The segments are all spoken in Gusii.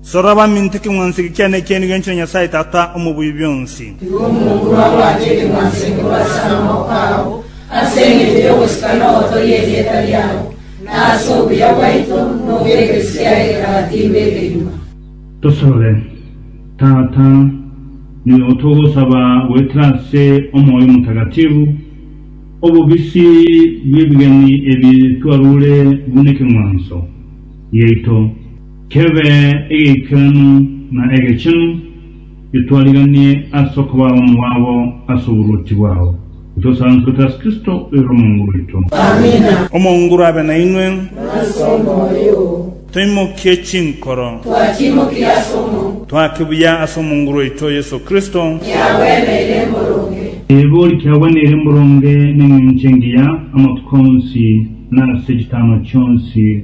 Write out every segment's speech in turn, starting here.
Sora baminto ekeng'wanso eke kiane ekieni gwenchera Nyasae Tata omobuya bw'onsi. Igo omokura obwate ekeng'wanso eke bwe ase amaboko ao, ase engencho y'ogosika nogotogia erieta riao, na ase obuya bwaito nobw'egesu kiaye kera timbe ekenywa. Tosabe. Tata, nigo togosaba goetera ase omoyo omotagatifu obobisi bw'ebigeni ebi twarure buna ekeng'wanso giaito. Kebe egeikeranu na egechenu, getwariganie ase okoba bomo bwabo ase oboruoti bwao, gotwesansorete ase Kristo oire omonguru oito. Omonguru abe nainwe. Toimokie chinkoro. Twake buya ase omonguru oito Yeso Kristo. Eebe ori kiagwa nere mboronge neng'encho engiya amatuko onsi na ase chitama chionsi.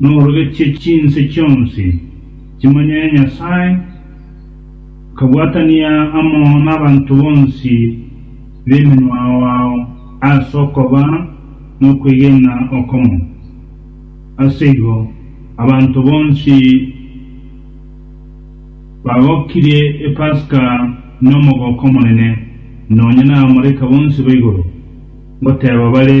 Norogetie chinse chionsi chimanye Nyasae, kabwatania amo nabanto bonsi b'emenwa ao ase okoba nokwegena okomo. Ase igo abanto bonsi bagokirie Epasika nomogoko omonene, nonya nabamalaika bonsi baigoro, ngoteeba bare,